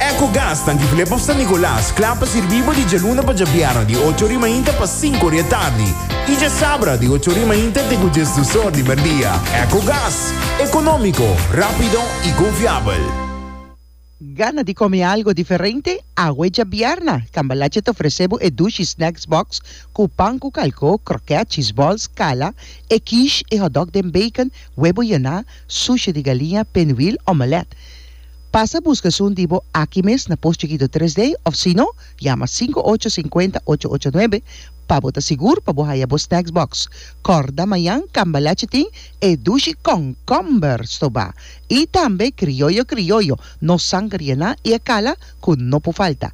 Ecogas ta Antigulé pa San Nicolas, kla pa sirbí bo di djaluna pa djabièrnè di ocho ori mainta pa sinku ori atardi i djasabra di ocho ori mainta te ku djes dusor di merdia. Ecogas, ekonómiko, rápido i konfiabel. Gana di kome algo diferente? Awe djabièrnà, Cambalache ta ofresé bo e Dushi Snacks Box ku pan ku kalkó, krokèt, cheese balls, kala, e quiche, e hotdog den bacon, webo yená, sushi di galinha, pinwheel, omelette. Pasa buska esun di bo aki mes na Post Chikito Tres Day of sino yama sinku ocho sinkuenta ocho ocho nuebe pa bo ta sigur pa bo haya bo snacks box. Kòrda mañan Cambalache tin e dushi kònkòmber stobá i tambe krioyo krioyo no sanger yená i e kala ku no por falta.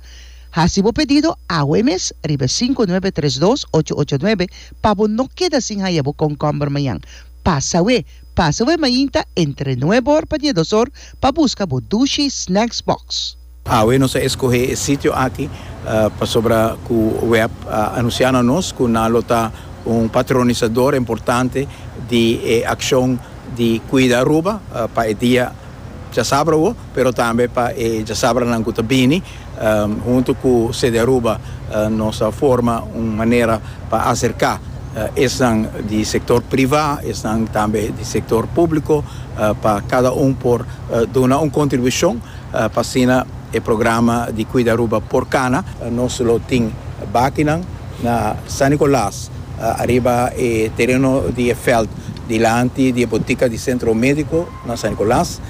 Hasi bo pedido awe mes riba e sinku nuebe tres dos ocho ocho nuebe pa bo no keda sin haya bo kònkòmber mañan. Pasa we! Pasa bo e mainta entre nuebe or pa diedos or pa busca bo Dushi Snacks Box. Awe nos a escoge e sitio aki pasobra cu web a anuncia na nos cu nan lo ta un patronisador importante di e accion di cuida Aruba pa e dia djasabra. pero tambe pa e djasabranan cu ta bini, hunto cu CDAruba nos a forma un manera pa acerca esnan di sector priva, esnan tambe di sector publico, pa cada un por duna un contribucion pa asina e programa di CuidaAruba por cana. Nos lo tin bakinan na San Nicolas, ariba e tereno di e veld dilanti di e botica di Centro Medico na San Nicolas.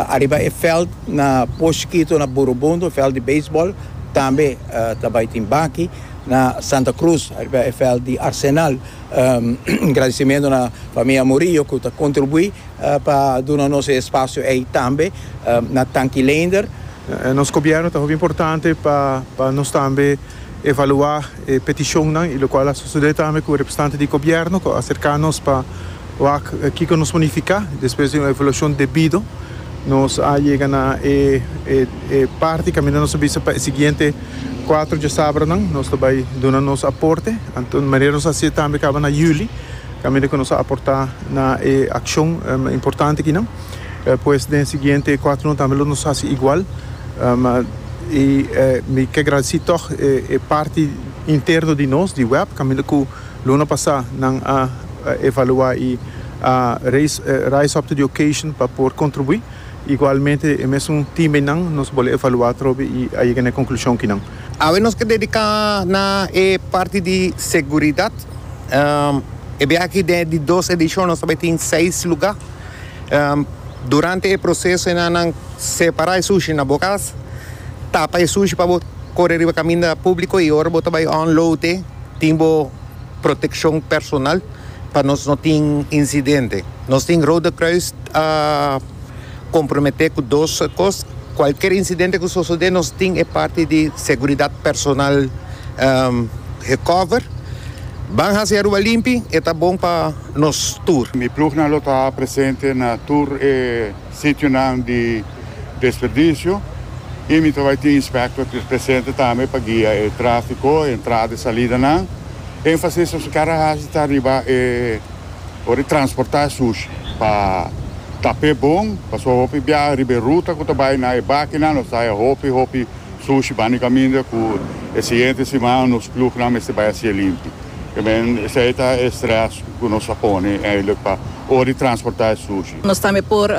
Ariba e veld na Poshkito na Burubundo, e veld di beisbòl, tambe ta bai tin baki. Na Santa Cruz, ariba e veld di Arsenal. Un gradisimentu na famia Murillo ku ta kontribuí pa duna nos e espasio ei tambe. Na Tanki Leender. Nos gobièrnu ta hopi importante pa nos tambe. evaluá e petishonnan i lokual a sosodé tambe ku representante di gobièrnu ku a aserká nos pa wak kiko nos por nifiká. Despues di un evaluashon debido nos a yega na e e parti kaminda nos a bisa pa e siguiente kuater djasabranan nos ta bai duna nos aporte. Anto manera nos a hasié tambe kaba na yüli kaminda ku nos a aportá na e akshon importante akinan pues den siguiente kuaternan tambe lo nos hasi igual. I mi ke gradisí tòg e parti interno di nos di web kaminda ku luna pasá nan a evaluá i a rise up to the occasion pa por kontribuí. Igualmente e mesun timenan nos bole evaluá atrobe i a yega na e konklushon kinan. Awe nos ke dediká na e parti di seguridat. E biaha aki den e dos edishon nos ta bai tin seis lugá. Durante e proseso e nannan separa e sushi na bo kas, tapa e sushi pa bo kore riba kaminda publiko i ora bo ta bai unload e tin bo protekshon personal pa nos no tin insidente. Nos tin Rode Kruis a komprometé ku dos kos, kualker insidente ku sosodé nos tin e parti di seguridat personal gekover. Ban hasi Aruba limpi, e ta bon pa. nos tur. Mi plugnan lo ta presente na tur e sitionan di desperdicio y mi ta bay tin inspector ki presente tambe pa guia e trafico, e entrada y salidanan. Enfasis nos kere haci ta riba e ora di transporta e sushi pa ta pe bon, pasobra hopi biaha riba e ruta cu ta bay na e bakinan nos ta haya hopi hopi sushi bani caminda cu e siguiente siman nos plugnan mester bay haci e limpi. Esei esei ta e stress ku nos a pone eindelijk pa ora di transporta e sushi. Nos tambe por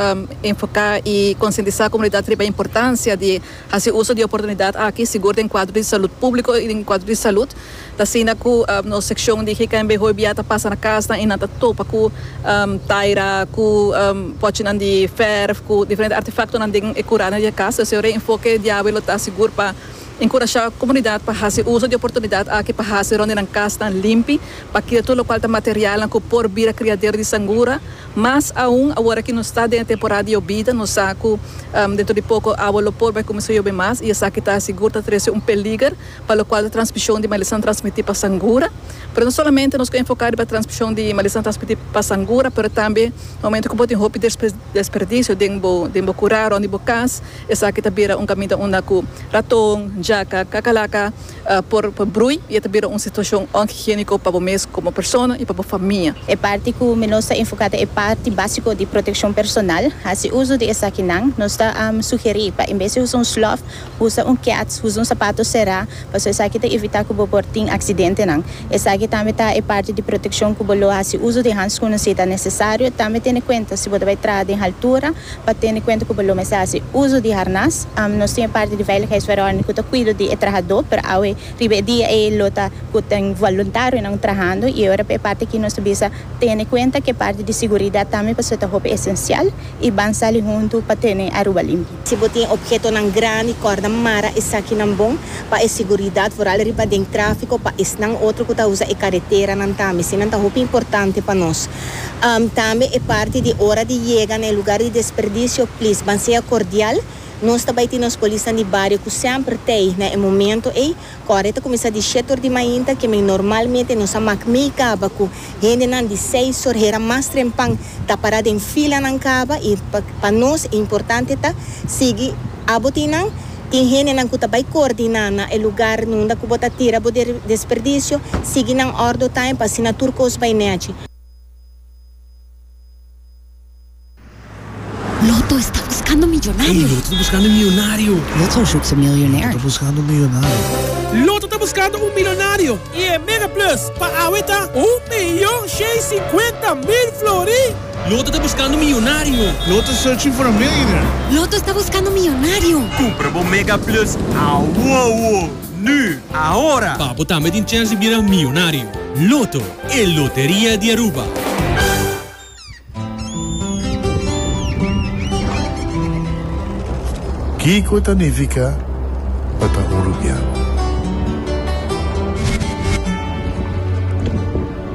enfoka i konsientisá komunidat riba e importansia di hasi uso di e oportunidat aki, sigur den kuadro di salut públiko i den kuadro di salut. Ta asina ku nos sekshon di GKNB hoy bia ta pasa na kasnan i nan ta topa ku taira, ku pòchinan di fèrf, ku diferente artefaktonan den e kurana di e kas. Esei reenfoke diawe lo ta sigur pa. Enkurashá komunidat pa hasi uso di oportunidat aki pa hasi rònt di nan kasnan limpi pa kira tur lokual ta materialnan ku por bira kriadero di sangura. Mas aun awor a ki nos ta den e temporada di yobida, nos sa ku dentro di poko awa lo por bai kuminsá yobe mas i esaki ta sigur ta trese un peliger pa lokual ta transmishon di malesa transmití pa sangura. Pero no solamente nos ku enfoká riba transmishon di malesa transmití pa sangura pero tambe na momentu ku bo tin hopi desperdisio den bo kurá rònt di bo kas, Esaki ta bira un kaminda unda ku raton, jaka, kakalaka por brui i e ta bira un situashon onhigiéniko pa bo mes komo persona i pa bo famia. E parti ku mi nos ta enfoká ta e parti básiko di protekshon personal. Hasi uso di esakinan. Nos ta sugerí pa en bes di usa un slòf, usa un kèts, usa un sapato será, pasobra esaki ta evitá ku bo por tin aksidentenan. Esaki tambe ta e parti di protekshon ku bo lo hasi uso di hanskun si ta nesesario. Tambe tene kuenta si bo ta bai traha den haltura. Pa tene kuenta ku bo lo mester hasi uso di harnas. Nos tin e parti di veiligheidsverordening ku ta kuido di e trahadó, pero awe riba e dia ei lo ta ku tin voluntarionan trahando i ora pa e parti aki nos ta bisa tene kuenta ku e parti di siguridat tambe pasobra ta hopi esensial i ban sali huntu pa tene Aruba limpi. Si bo tin ophetonan grandi, kòrda mara esakinan bon pa e siguridat, vooral riba den tráfiko pa esnan otro ku ta usa e kareteranan tambe. Eseinan ta hopi importante pa nos. Tambe e parti di ora di yega na e lugar di desperdicio, please ban sea cordial. Nos ta bai tin nos polisnan di bario cu semper t'ey na e momento ey. Cu awor e ta cuminsa di shete ur di mainta, kimen normalmente nos a mak mey caba cu hendenan di seis ur hera mas trempan ta para den filanan caba y pa nos e importante ta sigui abo tin nan. Tin hendenan ku ta bai koordiná na e lugar nunda ku bo ta tira bo desperdisio, sigui nan òrdo taim pa asina tur kos bai nèchi. Loto esta buskando miyonario! Loto ta buskando un miyonario! Loto zoekt een miljonair! Loto ta buskando un miyonario! Loto ta buskando un milonario i e Mega Plus pa awe ta un miyon shei sinkuenta mil flori! Loto ta buskando miyonario. Loto is searching for a millionaire. Loto esta buskando miyonario. Kumpra bo Mega Plus awowo, nu, ahora! Pa bo tambe tin chèns di bira miyonario. Loto, e loteria di Aruba. Kiko ta nifica pa ta un rubian?